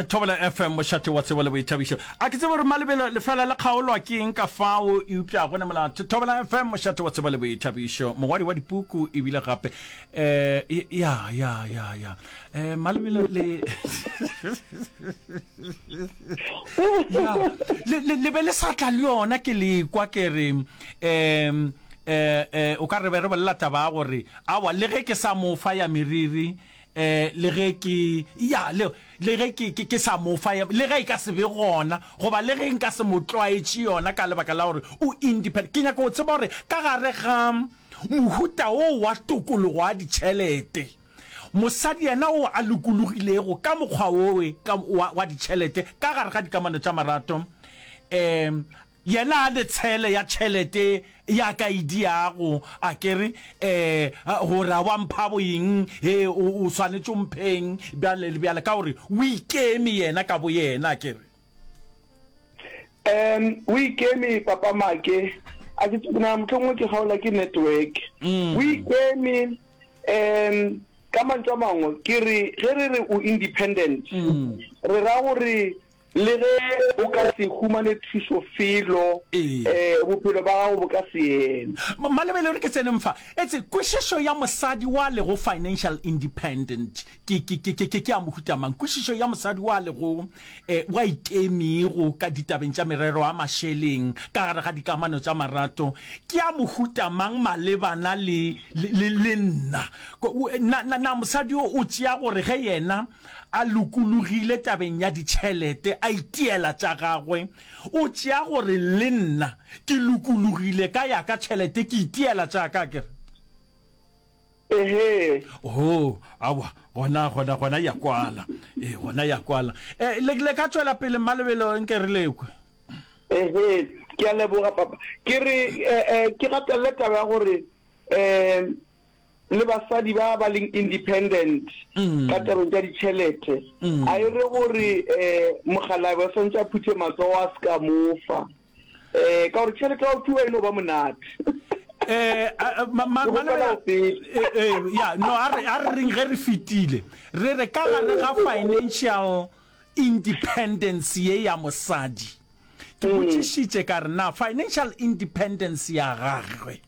thobela fm mošate wa tsebo le boithabišo a ke tsebo gore malebelo lefela le kgaolwa ke eng ka fao eupša go ne molato thobela fm mošate wa tsebo le boithabišo mogwadi wa dipuku ebile gape um ya ya ya ya um malebelo le le be le sa tla le yona ke lekwa ke re um um o ka re be re bolela taba ya gore awa le ge ke sa mofa ya meriri Eh, le ge ke, ya, le, le ge ke, ke, ke sa mo fa, le ge e ka se be gona, goba le ge nka se mo tlwaetše yona ka lebaka la gore o independent. Ke nyaka go tseba gore ka gare ga mohuta wo wa tokologo ya ditšhelete, mosadi yena o a lokologilego ka mokgwa wowe ka, wa, wa ditšhelete ka gare ga dikamano tša marato, eh, Yena a le tshele ya tšhelete ya ka e diago, a ke re, Ee, gore a wa mpha boyeng, he, o, o swanetše o mpheng, bjale le bjale, ka gore o ikeme yena ka boyena, a ke re. Em, o ikeme, Papa Make, a ke, ke nagana mohlomongwe ke kgaolwa ke network. O ikeme, em, ka mantšu a mangwe, ke re, ge re re o independent, re ra gore Le ge o ka se humane thušo felo, bophelo ba gago bo ka se eme. Malebele o re, Ke tseneng fa. Etse kwešišo ya mosadi wa lego financial independent ke ya mohuta mang? Kwešišo ya mosadi wa lego wa ikemego ka ditabeng tša merero ya mašeleng ka gare ga dikamano tša marato ke ya mohuta mang malebana le nna? Na mosadi yo o tšea gore ge yena A lokologile tabeng ya ditšhelete, a itiela tša gagwe. O tšea gore le nna ke lokologile ka ya ka tšhelete, ke itiela tša ka, akere? Ehee. Oo, aowa, gona, gona, gona ya kwala. Ee, gona ya kwala. E, le, le ka tšwela pele, Mma Lebelo, nke re lekwe. Ehee, ke a leboga, Papa. Ke re, eh, eh, ke gatelele taba ya gore, eh, le basadi ba ba leng independent ka tabeng tša ditšhelete a e re gore um mogalabe o swantse a phuthe matsogo a se ka mofa um ka gore tšhelete ya go fiwa e no ba monate eh ya no a re reng ge re fetile re re ka gare ga financial Independence ye ya mosadi. Ke botšišitše ka re na financial independence ya gagwe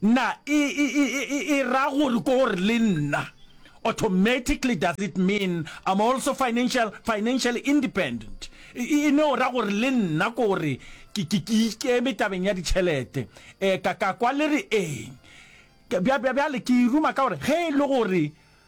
na e, e, e, e, e ra gore ko gore le nna automatically does it mean I'm also financial financially independent e ne o ra gore le nna ko gore ke ke ke ikeme tabeng ya ditšhelete eh ka ka kwa le re eng bjale ke iruma ka gore ge e le gore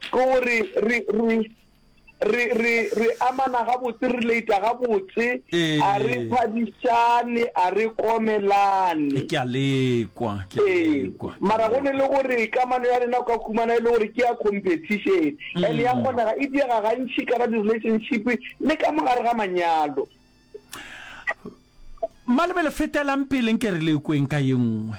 Ke gore re, re, re, re, re amana gabotse, re relata gabotse, a re Ee. phadišane, a re komelane. Ke a lekwa, ke a Ee, lekwa. ke a mara go ne lekwa. le gore kamano ya rena o ka khumana e le gore ke ya competition and ya kgonega e diega gantši ka ga di-relationship le ka mogare ga manyalo. Malebele fetelang pele nke re lekweng ka ye nngwe.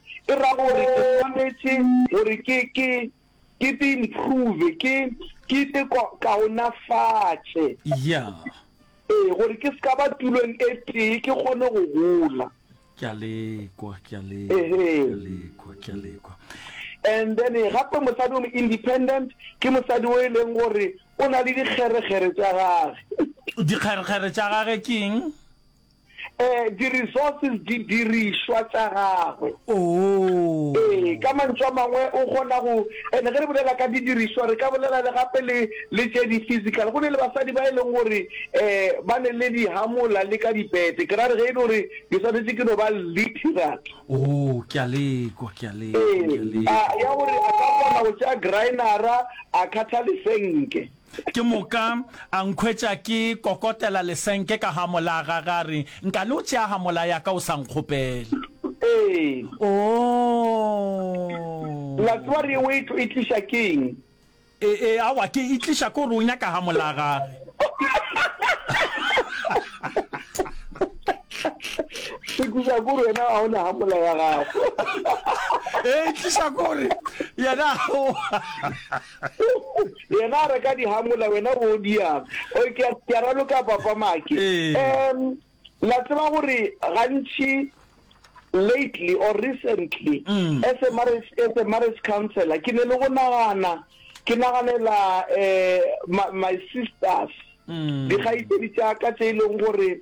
e ra gore ke swanetše gore ke, ke, ke te improve, ke, ke te ko, kaonafatše. Yeah. Ee, gore ke se ka ba tulong e tee, ke kgone go gola. Ke a le kwa, ke a le, ke a Ehee. le kwa, ke a le kwa. And then eh, gape mosadi o mo independent, ke mosadi o e leng gore o na le dikgerekgere tša gage. Dikgerekgere tša gage ke eng? eh, di-resources, didirišwa tša gagwe. Oo. Ee, ka mantšu a mangwe o kgona go, ene ge re bolela ka didirišwa re ka bolela le gape le le tše di-physical. Go ne le basadi ba e leng gore um ba ne le dihamola le ka dipete, ke ra re ge e le gore ke swanetše ke no ba literate, Oo, ke a lekwa, ke a lekwa, ke a ee, a, lekwa. ya gore a ka kgona go tšea graenara a kgatha lesenke. Ke moka a nkhwetša ke kokotela lesenke ka ga mola gage a re, Nka le o tšea ga mola ya ka o sa nkgopela? Ee. La tseba Oh! re o e tlo e tliša ke eng? E, e, awa, ke e tliša ko re o nyaka ga mola gage. E tliša ko re wena ga o na ga mola ya gago. E tliša ko re yena ga o. yena a re ka dihamola wena o diang o ke a raloka papa make um la tseba gore gantši lately or recently mm. as a marriage as a marriage counselor ke ne le go nagana ke naganela um my sisters mm. dikgaitsedi tša ka tse e leng gore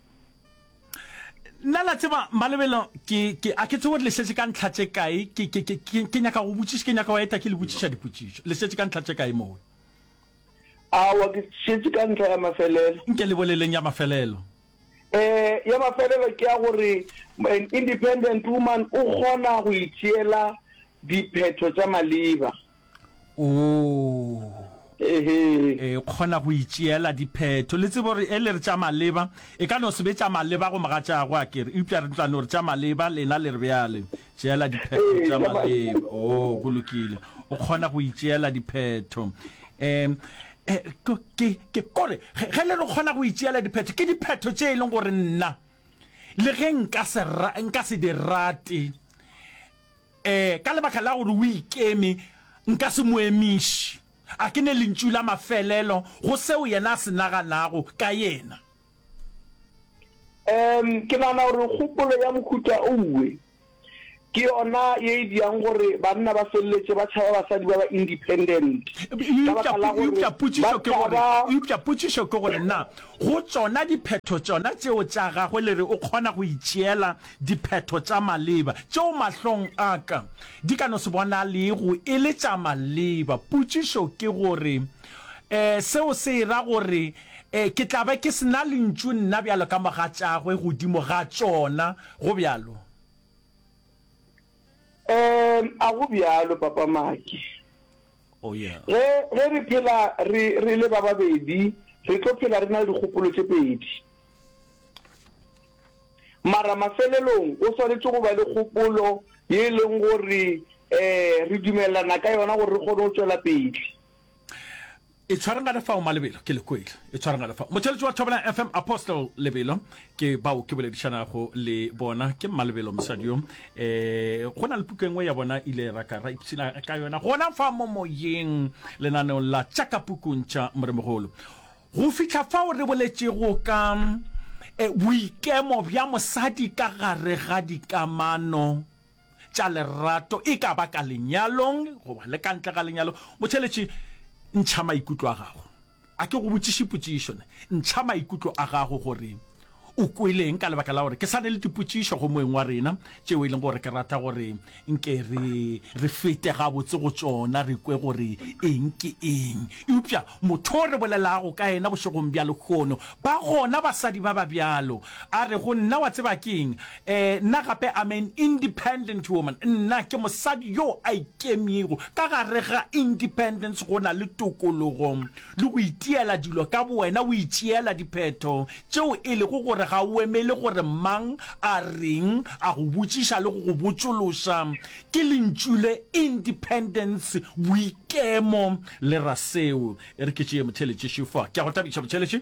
nna la tseba malebelo ke ke a ke tsebo le setse ka ntlha tse kae ke ke ke ke nyaka go botsisa ke nyaka wa eta ke le botsisa dipotsiso le setse ka ntlha tse kae moo a wa ke setse ka ntlha ya mafelelo nke le boleleng ya mafelelo eh ya mafelelo ke ya gore an independent woman o kgona go itshiela diphetho tsa maliba Oh. e kgona go itšeela diphetho le tsebo re e le re tša maleba e ka no se be tša maleba go moga tša go a kere eupša re tlano re tša maleba lena le re bjale tšeela diphetho tša maleba o oh, go lokile o kgona go itšeela diphetho um ke kore ge le re kgona go itšeela diphetho ke diphetho tše e leng gore nna le ge nka se di rate Ee, ka lebaka la gore o ikeme, nka se mo emiše. A ke ne lentšu la mafelelo go seo yena a se naganago ka yena. Ee, ke nagana gore kgopolo ya mohuta owe ke yona ye e dirang gore banna ba feleletše ba tšhaba basadi ba ba independent, ka baka la gore ba potšišo ke gore na go tšona diphetho tšona tšeo tša gagwe le re o kgona go itšeela Diphetho tša maleba tšeo mahlong a ka di ka no se bonalego e le tša maleba. Potšišo ke gore, Um seo se ra gore um ke tla be ke se na lentšu nna bjalo ka mogatšagwe godimo ga tšona, go bjalo? Um a go bjalo, Papa Maki? Oh, yeah. Ge, ge re phela re, re le ba babedi, re tlo phela re na le dikgopolo tše pedi. Mara mafelelong go swanetše go ba le kgopolo ye e leng gore um re dumelelana ka yona gore re kgone go tšwela pele. Itshwareng ga le fao, Malebelo, ke le kwele. Itshwareng ga le fao. Motšweletši wa Thobela FM, Apostle Lebelo, Ke bao ke boledišanago le bona ke Mmalebelo mosadi yo. E, go na le puku e nngwe ya bona ile ra ka ra ipshina ka yona gona fa mo moyeng lenaneong la tša ka pukung tša Moremogolo. Go fihla fao re boletšego ka e, boikemo bja mosadi ka gare ga dikamano tša lerato, e ka ba ka lenyalong goba le ka ntle ga lenyalo, Motšheletši, ntšha maikutlo a gago. A ke go botšiše potšišo na? Ntšha maikutlo a gago gore o kweleng ka lebaka la gore ke sa ne le dipotšišo go moeng wa rena tšeo e leng gore ke rata gore nke re re fete gabotse go tšona re kwe gore eng ke eng. Eupša motho o re bolelago ka yena bošegong bja lekgono ba gona basadi ba ba bjalo a re go nna, Wa tseba keng? Ee, nna gape I'm an independent woman, nna ke mosadi yo a ikemyego. Ka gare ga independence go na le tokologo le go itiela dilo ka bowena, o itšeela diphetho tšeo e lego gore ga o emele gore mang a reng, a go botšiša le go go botšološa. Ke lentšu le independence, boikemo le ra seo. E re ke tšee Motheletši šefo. Ke a go thabiša Motheletši.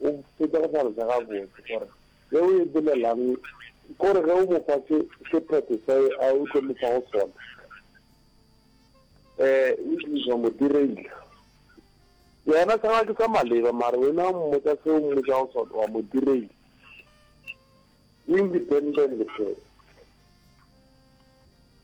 o fetša go hlaloša gabotse gore ge o e bolelang kore ge o mo fa se sephetho sa e a o tlo mo fa go sona um o diriša mo direila yena sa ke sa maleba mare wena mmotsa se o mmotsa go sona wa mo direila independent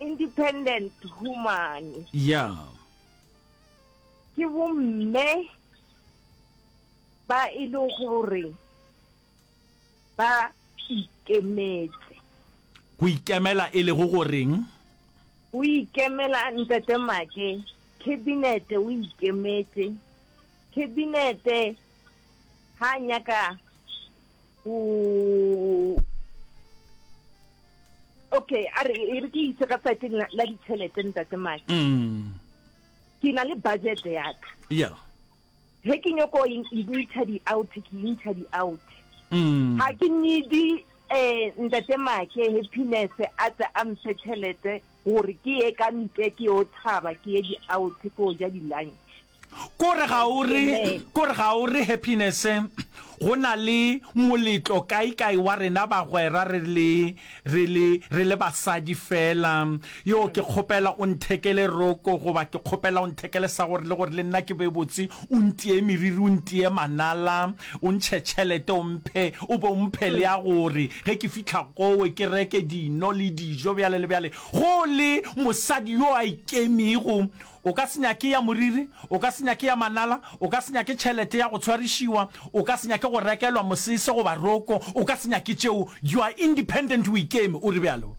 independent woman ya ke bomme ba e le gore ba ikemetse go ikemela e lego goreng o ikemela ntate make khabinete o ikemetse khabinete ha nyaka okay a re e re ke itse ka saeteng la ditšhelete ntate maki mm. ke na le budget ya ka yeah he ke nyoko intsha di-out ke intsha di-out ga mm. ke nedi um ntate make happiness a tse a mphe tšhelete gore ke ye ka ntle ke yo thaba ke ye di-out ke o ja di-lunch Kore ga o re, kore ga o re Happiness, go na le moletlo kae kae wa rena bagwera re le, re le, re le basadi fela. Yoo, ke kgopela o nthekele roko, goba ke kgopela o nthekele sa gore, le gore le nna ke be botse, o ntiye meriri, o ntiye manala, o ntšhe tšhelete, o mphe, o be o mphe le ya gore ge ke fihla kowe ke reke dino le dijo, bjale le bjale. Go le mosadi yo a ikemego, O ka se nyake ya moriri, o ka se nyake ya manala, o ka se nyake tšhelete ya go tshwarišiwa, o ka se nyake go rekelwa mosese goba roko, o ka se nyake tšeo. You are independent, o ikeme, o re bjalo.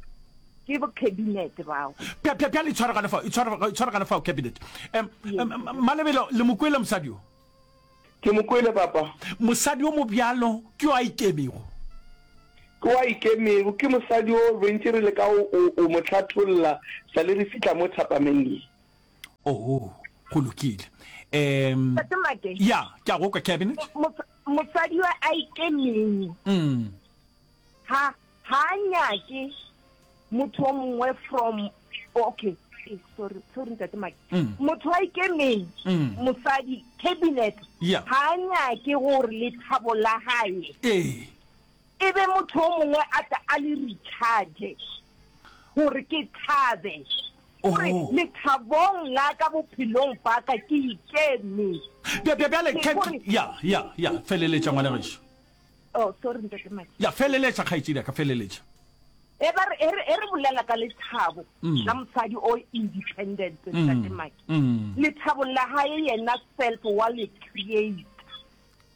Ke bo Cabinet bao. Bja, bja, bjale itshware gane fao, itshware, itshware gane fao, Cabinet. Em, em, Malebela, le mo kwele mosadi yo? Ke mo kwele, Papa. Mosadi yo mobjalo ke yo a ikemego. Ke wa ikemego, ke mosadi yo rentše re leka go o, o mo hlatholla sa le re fihla mo thapameng ye. Oo, go lokile. Um, Tate Mate. ya, ke a go kwa, Cabinet. Mo, mo, mosadi yo a ikemego. Um. Ha, Ha a nyake motho o mongwe from okay eh, sorry sorry ntate maki mm. motho a ikemeng mm. mosadi cabinet yeah. ha a nyake gore le thabo la gae eh. e be motho o mongwe a ta a le recharge gore ke thabe gore oh. lethabong la ka bophelong ba ka ke ikeme bjale ya ya ya feleletša ngwana gešo Oh, sorry ntate Maki. Ya feleletša kgaetšedi a ka feleletša. E ba re e re e re bolela ka lethabo mm. la mosadi o independent mm. ntate Maki. Mm. Lethabo la hae yena self wa le create.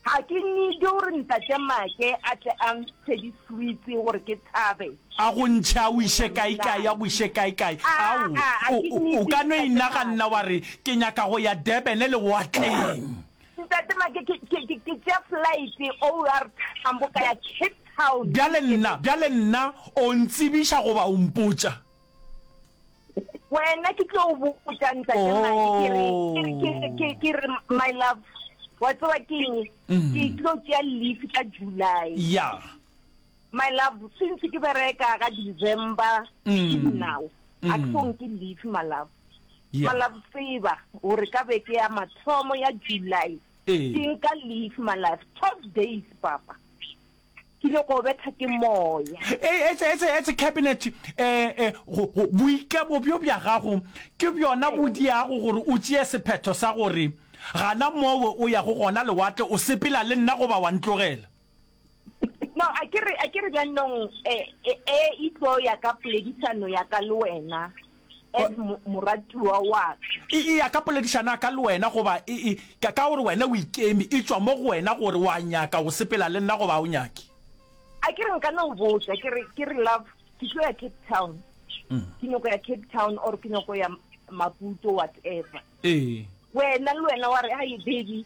Ha ke need gore ntate Maki a tle a ntshe di sweets gore ke thabe. A go ntshe a o ise kae kae a go ise kae kae. Ah, Ao ah, o ka no inaganna wa re ke nyaka go ya Durban le watleng. Ntate Make, ke, ke, ke, ke tšea flight OR Tambo ka ya Cape Town. Bjale nna, bjale nna o ntsebiša goba o mpotša? Wena ke tlo o botša Ntate Make, ke re, ke re, ke re, ke, ke re, my love, wa tseba ke eng? Ke tlo tšea leave ka July. Yeah. My love, since ke bereka ka December ke dinao. A ke fong ke leave my love. Yeah. My love tseba gore ka beke ya mathomo ya July Ee. ke nka leave my love 12 days papa. Ke ile go betha ke moya. Eh, etse etse etse cabinet eh eh go go boikabo bjo bja gago ke bjona bo diago gore o tšee sephetho sa gore gana mowe o ya go gona lewatle o sepela le nna goba wa ntlogela. no a ke re a ke re jaanong e e, e itlo ya ka poledisano ya ka le wena as mo- moratiwa wa ka e e ya ka poledišana ka le wena goba e e ka ka gore wena o ikeme e tšwa mo go wena gore wa nyaka go sepela le nna goba ha o nyake a ke re nka no botsa ke re ke re love ke tlo ya cape town ke nyoko ya cape town or ke nyoko ya maputo whatever ee wena le wena wa re hai baby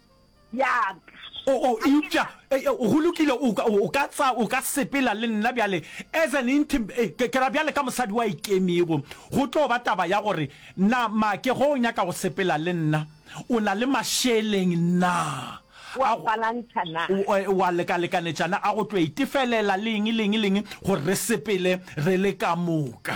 Yap. O, o, eupša, e, e, go lokile, o ka, o ka tsa, o ka sepela le nna bjale, as an intim, e, ke, ke ra bjale ka mosadi wa ikemego. Go tlo ba taba ya gore, na, Make, ge o nyaka go sepela le nna, o na le mašeleng na? Wa A go- balantšha na? o- e, wa lekalekanetša na, a go tlo itefelela le eng, le eng, le eng, gore re sepele re le ka moka.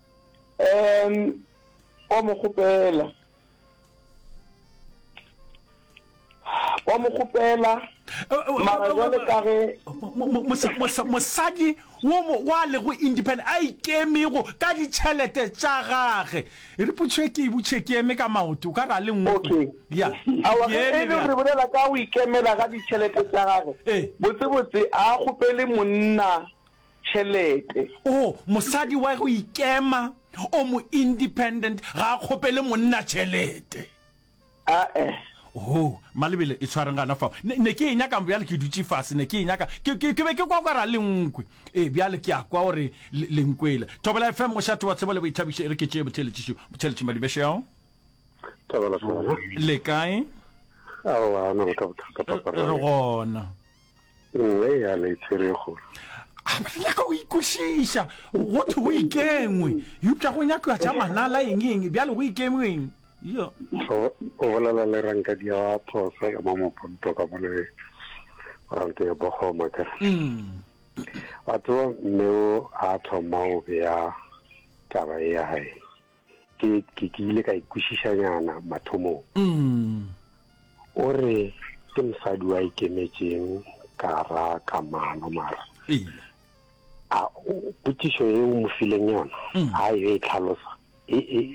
um wa mo kgopela wa mo kgopela mara jale ka ge mosadi wa lego independent a ikemego ka ditšhelete tša gage e re potšhe ke butšhe ke eme ka maoto ka ra le nngwe ya e le re bolela ka o ikemela ga ditšhelete tša gage botsebotse a kgopele monna tšhelete. Oo, mosadi wa go ikema, o mo-independent, ga a kgopele monna tšhelete. A-e. Oo, Malebele, e tshwareng gana fao. Ne, ne ke e nyakang, bjale ke dutše fase, ne ke e nyaka. Ke, ke, ke be ke kwa kwa ra Lenkwe. Ee, bjale ke a kwa gore le, le nkwele. Thobela FM, mošate wa tsebo le boithabišo, e re ke tšee botheeletšišo, botheeletši Madibešeo. Thobela FM. Le kae? Aowa, a na le ka bothata, Papa. Re gona. Nngwe ya le tšerego. A ba nyaka go ikwešiša, go thwe go ikengwe, eupša go nyakwa tša manala eng eng, bjale go ikengwe eng? Yo. O, o bolela le rankadi ya phosa ya mo Moponto ka mo le ranke ya Bogoma ka. Wa tseba mme o a thoma o bea taba ya hae. ke ke ke ile ka ikwešišanyana mathomong mm. o re ke mosadi wa ikemetšeng ka ra kamano mara a potšišo e o mo fileng yona mm. ga e e tlhalosa e, e,